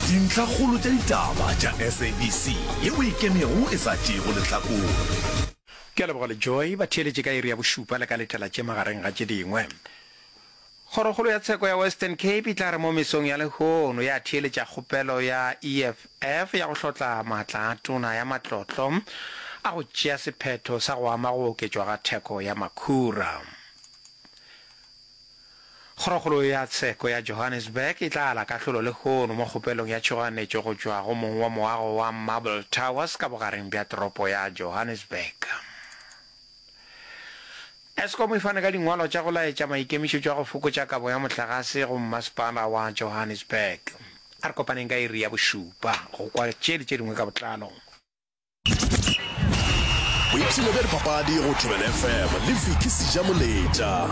Dintlhakgolo tša ditaba tša SABC ye o e kemego e sa tšeego lehlakore. Ke a leboga le Joy ba theeletše ka iri ya bošupa le ka letela tše magareng ga tše dingwe. Kgorokgolo ya tsheko ya Western Cape e tla re mo mesong ya lehono ya theeletša kgopelo ya EFF ya go hlotla maatla a tona ya matlotlo a go tšea sephetho sa go ama go oketšwa ga theko ya makhura. Kgorokgolo ya Tsheko ya Johannesburg e tla ala kahlolo lehono mo kgopelong ya tšhoganetšo go tšwa go mong wa moago wa Marble Towers ka bogareng bja toropo ya Johannesburg. Eskom e fane ka dingwalwa tša go laetša maikemišetšo a go fokotša kabo ya mohlagase go mmasepala wa Johannesburg. A re kopaneng ka iri ya bošupa go kwa tše le tše dingwe ka botlalo. boipshino bja dipapadi go tobela fm le fiki seja moletša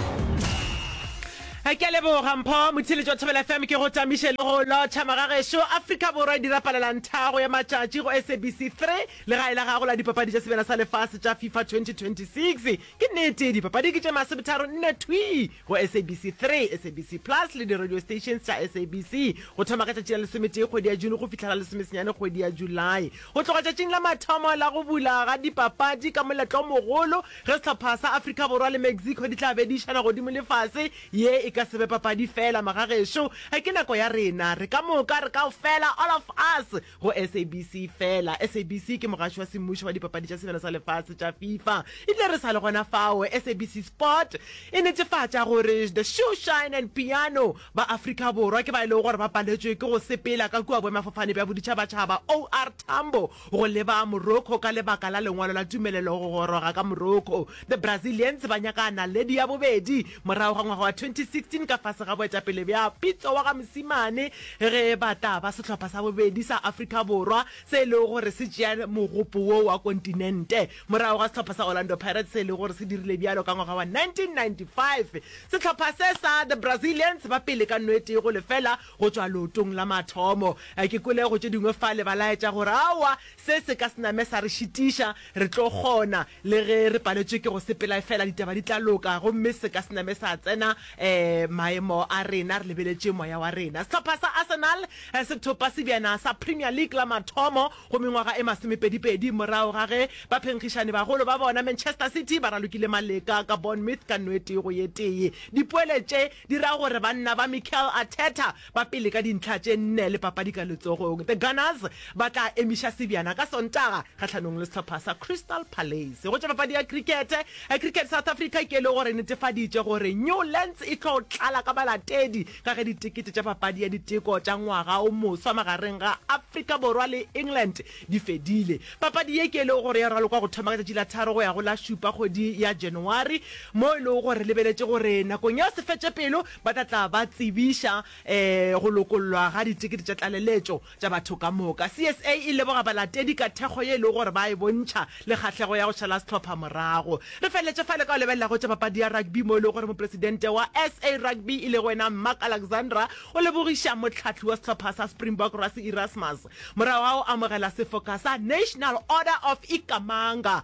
ke leboga mpho motshile jwa thobela fm ke go tamiše le go lotšha magagešo aforika borwa e dira palelantago ya matšatši go sabc 3 le gae la gago la dipapadi tša sebjana sa lefase tša fifa 2026 ke nnete dipapadi ke tše masebetharo nne thwi go SABC 3, SABC Plus le di-radio stations tša SABC go thoma ka tšatši la lesometee kgwedi ya June go fihla la lesomesenyane kgwedi ya July. Go tloga tšatšing la mathomo la go bula ga dipapadi ka moletlo o mogolo ge sehlopha sa Afrika Borwa le Mexico di tla be di išana godimo le fase, ye e ka se be papadi feela, magagešo, ga ke nako ya rena re ka moka re kaofela, all of us, go sabc fela sabc ke mogaši wa semmušo wa dipapadi tša sebjana sa lefase tša fifa ebile re sa le gona fao sabc sport e netefatša gore the shoe shine and piano ba afrika borwa ke ba e lego gore ba paletšwe ke go sepela ka kua boemafofane bja boditšhabatšhaba or tambo go leba morocco ka lebaka la lengwalo la tumelelo go goroga ka morocco The Brazilians ba nyaka naledi ya bobedi morago ga ngwaga wa 2016 ka fase ga boetapele bja Pitso wa ga Mosimane ge ba tla ba sehlopha sa bobedi sa Afrika Borwa se e lego gore se tšea mogopo wo wa kontinente morago ga sehlopha sa Orlando Pirates se e lego gore se dirile bjalo ka ngwaga wa 1995. Sehlopha se sa The Brazilians ba pele ka no e tee go lefela go tšwa lootong la mathomo. Ke kwele go tše dingwe fale ba laetša gore aowa Se se ka se name sa re šitiša. Re tlo kgona, le ge re paletšwe ke go sepela. Efela ditaba di tla loka, gomme se ka se name sa tsena um maemo a rena. Re lebeletše moya wa rena. Sehlopha sa Arsenal se thopa sebjana sa Premier League la mathomo go mengwaga e masomepedipedi morago ga ge baphenkgišani-bagolo ba bona Manchester City ba ralokile maleka ka Bournemouth ka nno e tee go ye tee. Dipoele tše dira gore banna ba Mikel Arteta ba pele ka dintlha tše nne le papadi ka letsogong. The Gunners ba tla emiša sebjana ka Sontaga kgahlanong le sehlopha sa Crystal Palace. Go tša papadi ya krikete, Cricket South Africa ke e le gore e netefaditše gore Newlands e tlo tlala ka balatedi ka ge ditekete tša papadi ya diteko tša ngwaga o moswa magareng ga Afrika Borwa le England Di fedile. Papadi ye ke e lego gore ya ralokwa go thoma ka tšatši la tharo go ya go la šupa kgwedi ya January, mo e lego gore re lebeletše gore nakong ya sefetšepelo ba tla tla ba tsebiša um go lokollwa ga ditekete tša tlaleletšo tša batho ka moka. CSA e leboga balatedi ka thekgo ye e lego gore ba e bontšha le kgahlego ya go šala sehlopha morago. Re feleletše fale ka go lebelela go tša papadi ya rugby mo e lego gore mopresidente wa SA Rugby e lego yena Mark Alexandra o lebogiša mohlahli wa sehlopha sa Springbok Rassie Erasmus Morago ga go amogela sefoka sa National Order of Ikhamanga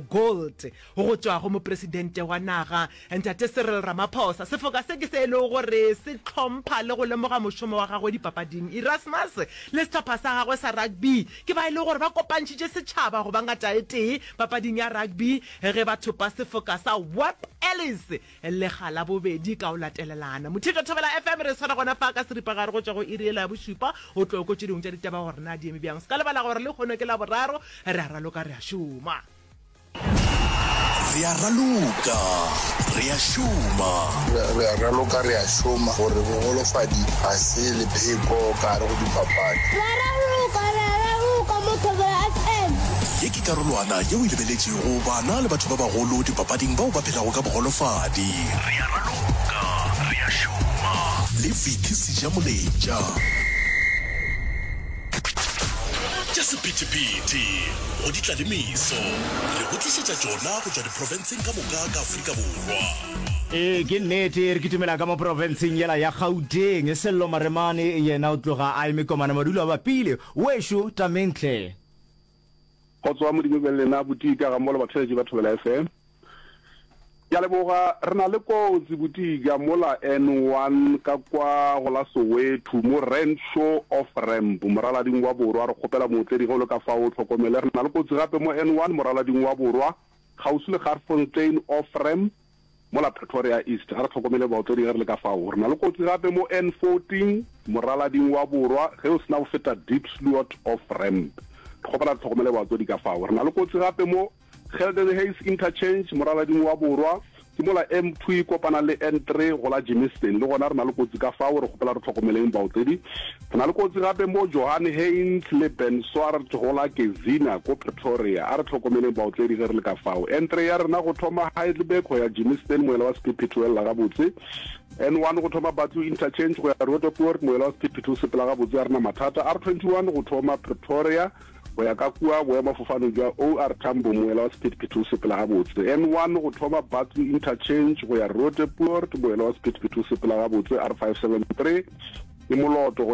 Gold go tšwa go Mopresidente wa naga, Ntate Cyril Ramaphosa, sefoka se ke se e lego gore se hlompha le go lemoga mošomo wa gagwe dipapading, Erasmus le sehlopha sa gagwe sa rugby ke ba e lego gore ba kopantšhitše setšhaba go ba ngataetee papading ya rugby ge ba thopa sefoka sa Webb Ellis. Lega la bobedi ka go latelelana. Mothietšo Thobela FM, re swara gona fa ka seripagare go tšwa go iri yela ya bošupa go tlo ko tše dingwe tša ditaba gore na di eme bjang. Se ka lebala gore lehono ke Laboraro, re a raloka re a šoma. Re a raloka re a šoma. Re a raloka re a šoma gore bogolofadi ga se lepheko ka gare go dipapadi. Re a raloka re a raloka mo Thobela FM. Ye ke karolwana yeo e lebeletšego go bana le batho ba bagolo dipapading bao ba phelago ka bogolofadi. Re a raloka, re a šoma. Le Vicky Sejamoletša. Tša sephethephethe go di tla le meso. Re go tlišetša tšona go tšwa diprofenseng ka moka ka Afrika Borwa. Ee, ke nnete, re kitimela ka mo profenseng yela ya Gauteng. Sello Maremane yena o tloga a eme komana madulo a bapile. Wešo, Tamentle. Kgotso Modimo e be le lena Botika ga mmogo le batheletši ba Thobela FM. Ke a leboga, re na le kotsi Botika mola N one ka kwa go la Soweto mo Renshaw off ramp moralading wa borwa, re kgopela mootledi ge o le ka fao o tlhokomele. Re na le kotsi gape mo N one moralading wa borwa kgauswi le Garsfontein off ramp. Mola Pretoria East, a re hlokomele baotledi ge re le ka fao. Re na le kotsi gape mo N14, moralading wa borwa, ge o se na go feta Diepsloot off ramp. Re kgopela le hlokomele baotledi ka fao. Re na le kotsi gape mo Geldenhuys Interchange, moralading wa borwa, ke mola N2 e kopana le N3, go la Germiston. Le gona re na le kotsi ka fao, re kgopela re hlokomeleng baotledi. Re na le kotsi gape mo Johan Heyns le Ben Swart go la Kezina ko Pretoria. A re tlhokomeleng baotledi ge re le ka fao. N3 ya rena go thoma Heidelberg go ya Germiston, moela wa sephephetho o elela gabotse. N1 go thoma Batlu Interchange go ya Roodepoort, moela wa sephephetho o sepela gabotse, a rena mathata. R21 go thoma Pretoria go ya ka kua boemafofaneng jwa OR Tambo, moela wa sephethephethe o sepela gabotse. N1 go thoma Batlu Interchange go ya Roodepoort, moela wa sephethephethe o sepela gabotse. R573 ke moloto go